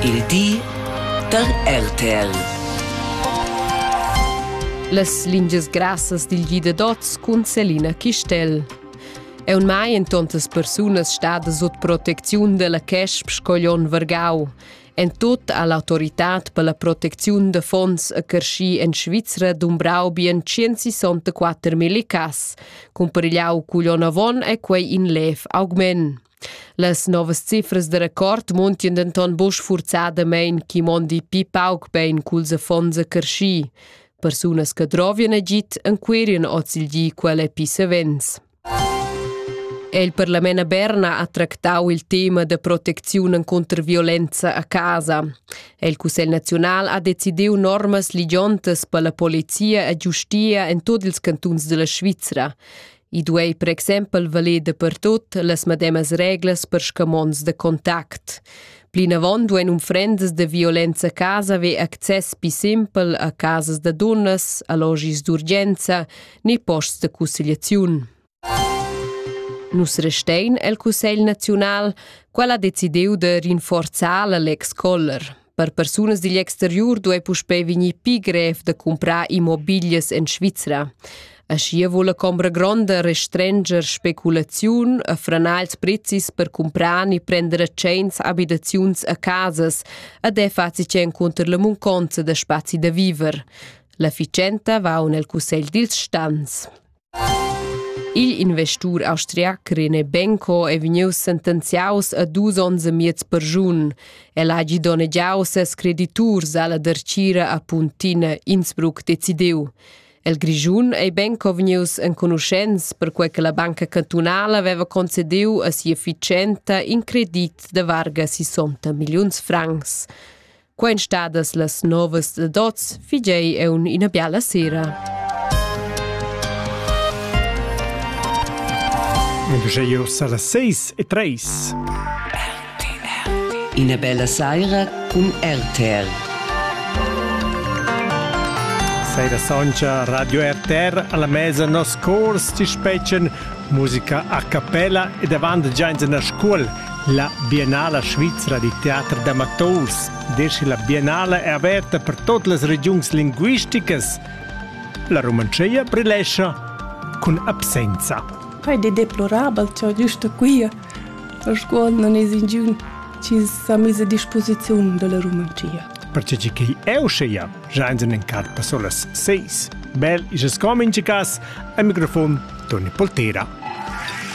Il di da RTL. Las lingias grassas dil gi da dots cun Selina Chistel. È un mai en tontas persunas stada sut protecziun della Chesp Scoglion Vargau. En tot ha l'autoritad per la protecziun da fonds a Carshi en Svizra dumbrau bien 164 mil cas. Cumperigliau cuglion avon è quei in lev augment. Las novas cifras da record muntien denton buc sfurzadamein chi mondi pi pauc bein culs affons a carschi. Persunas che drovien agit enquirien oz il gi quelle pi savens. Il parlament a Berna ha tractau il tema da protecziun contro violenza a casa. Il Cussegl nazional ha decidiu normas ligiontas per la polizia e giustia en tot ils cantuns della Svizra. I duei per exempel valer dapertut las medemas reglas per scamonds da contact. Plinavon duein unfrendas da violenza a casa haver access pli simpel a casas da dunnas, allogis d'urgenza ni posts da cussegliaziun. Nus restein el Cussegl naziunal, qual ha decidiu de rinforzar la Lex Koller. Per persunas digl exteriur duei puspei vegnir pli grev da cumprar immobiglias en Svizra. Aschia vul la combra gronda restrenger speculaziun e franar ils prezis per cumprar e prender a tscheins abitaziuns a casas ed è faci encunter la munconza da spazi da viver. L'efficienta va nel cussegl dils stans. Igl investur austriac Rene Benko è vegnius sentenziaus a dus onns e miez perschun. El hagi donnegiau ses crediturs alla dertgira a Puntina Innsbruck decidiu. El Grischun ei Benko vegnius enconuschents perquei che la banca cantunala aveva concediu a sia ficenta in credit de varga 60 milliuns francs. Quen stadas las novas da dots, figei eun ina biala sera. Geo sala 6 e 3. Ina bella saira cun RTR. Saira soncha Radio RTR alla mesa nos cors ti spetschen musica a cappella e davant giains in la scuol La Biennala svizra da teater d'amaturs descha la Biennala è averta per tut las regiuns linguisticas. La Rumantschia brilescha cun absenza. Quai è deplorabel già giusto qui a scuol non es ingiun ci sa mise a disposizione della Rumantschia. Perché che eu scia, jainsen in carpa solas seis. Bel is es com in cas, a microfon Toni Poltera.